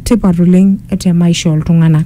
tipat oleng te maisha ooltung'anak.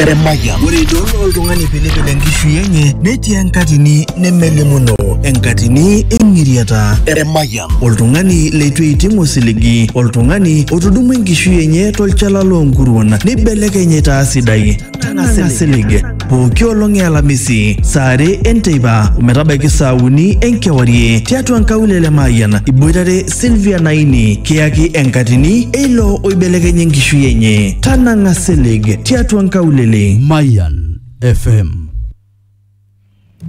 Eremaya. Ore idol oltung'ani pilipil enkishui enye netii enkatini nemelimuno, enkatini eng'iriata. Eremaya. Oltung'ani leitu eiting osiligi, oltung'ani otudumua enkishui enye tolchala loonkuruon neibelekeny aitaa sidai. Tanang'a silig. Pooki olong e Alamisi, saa are enteipa ometabaiki saa uni enkewarie tiatua nkaulele e Mayian iboitare Sylvia Naini kiyaki enkatini eilo oibelekenya enkishui enye. Tanang'a silig tiatua nkaulele. Mayan FM.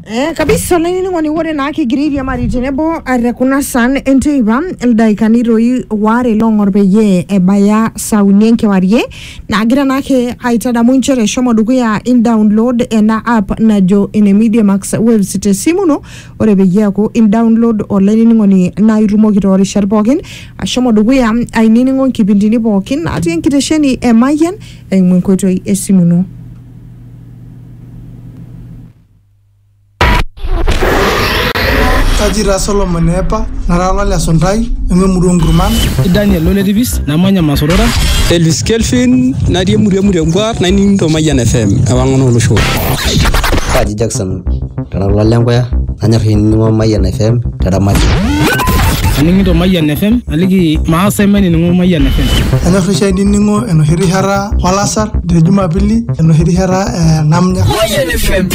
Eh, kabisa olainining'oni ore naa kigira airiamari tenebo eh, te kuna san enteipa ildaikani toi waare loong'or peyie ebaya saa uni enkewarie naagira naake aitadamu inchere shomo dukuya in download ena app najo ene Media Max Waves te simu ino Ore peyie eaku indaonlod olainining'oni naa itumoki too rishat pooki ashomo dukuya ainining'o nkipindini pooki natii enkitesheni e Mayian eimu enkoitoi e simu ino. Kaji taa Solomon eepa, nara olale suntai, nanu emurua oo nkurman. Kaji Daniel lo Letipis, namanya Masorora. Elvis Kelvin, natii emurua e Murengwa, naining to Mayian FM, ewang'an oo loshon. Kaji Jackson. Kara ilo le nkuya nanyor ainining'o Mayian FM te ramatie. Aning'ito Mayian FM aliki maas ainining'o Mayian FM. Anyor oshi ainining'o enoshi rishata olasar te jumapili enoshi rishata ee namnya. Mayian FM.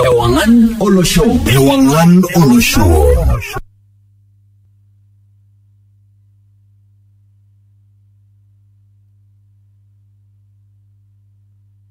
Ewang'an olosho. Ewang'an olosho.